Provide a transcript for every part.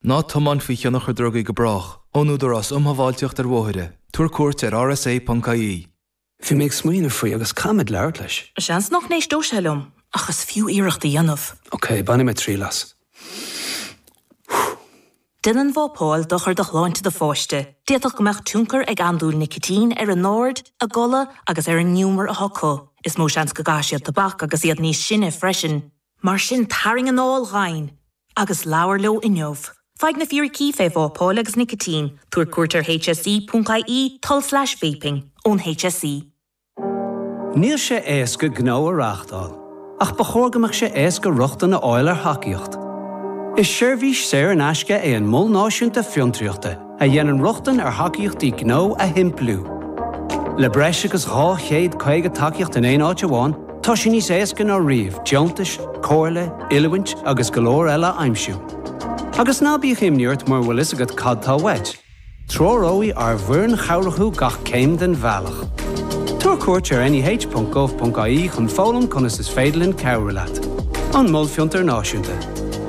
Ná tiomáin faoi thionchar drugaí go brách, ón Údarás Um Shábháilteacht ar Bhóithre, tabhair cuairt ar rsa.ie. Bhí mé ag smaoineamh faoi agus caithfidh mé labhairt leis. Seans nach n-éisteodh sé liom, ach is fiú iarracht a dhéanamh. Ok, bainfidh mé triail as. Déanann vapáil dochar do shláinte do pháiste. D'fhéadfadh go mbeadh tionchar ag andúil nicitín ar a n-aird, a gcodladh agus ar an ngiúmar atá acu. Is mó seans go gcaithfidh siad tobac agus iad níos sine freisin. Mar sin, tarraing anáil dhomhain agus labhair leo inniu. Faigh na fíricí faoi vápáil agus nicitín, tabhair cuairt ar hse.ie, tulslais vaping, ón hse. Níl sé éasca gnó a reáchtáil, ach ba chóir go mbeadh sé éasca rochtain a fháil ar thacaíocht. Is seirbhís saor in aisce é an Mol Náisiúnta Fiontraíochta, a dhéanann rochtain ar thacaíochtaí gnó a shimpliú. Le breis agus 250 tacaíocht in aon áit amháin, tá sé níos éasca ná riamh deontais, comhairle, oiliúint agus go leor eile a aimsiú. Agus ná bíodh imní ort mura bhfuil fhios agat cad tá uait, treoróidh ár bhfoireann chabhrach thú gach céim den bhealach. Tabhair cuairt ar NEH.gov.ie chun foghlaim conas is féidir linn cabhrú leat. An Mol Fiontar Náisiúnta.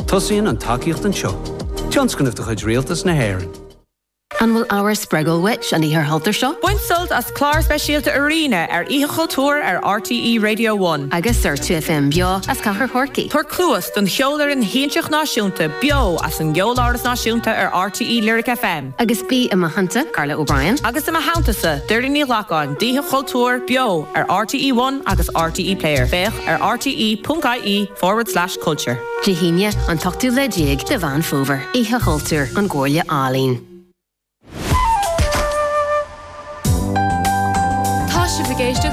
Tosaíonn an tacaíocht anseo. Tionscnamh de chuid Rialtas na hÉireann. An bhfuil ábhar spreagúil uait an Oíche Chultúir seo? Bain sult as clár speisialta Arena ar Oíche Chultúir ar RTÉ Radio One. Agus ar 2FM beo as Cathair Chorcaí. Tabhair cluas don Cheolfhoireann Shiansach Náisiúnta beo as an gCeoláras Náisiúnta ar RTÉ Lyric FM. Agus bí i mo theannta, Carla O'Brien. Agus i mo theanntasa, Doireann Ní Ghlacáin, d'Oíche Chultúir beo ar RTÉ One agus RTÉ Player. Féach ar rte.ie forward slash. Culture. Dé hAoine, an t-ochtú lá déag de Mheán Fómhair, Oíche Chultúir, ón gComhairle Ealaíon. Tá sibh ag éisteacht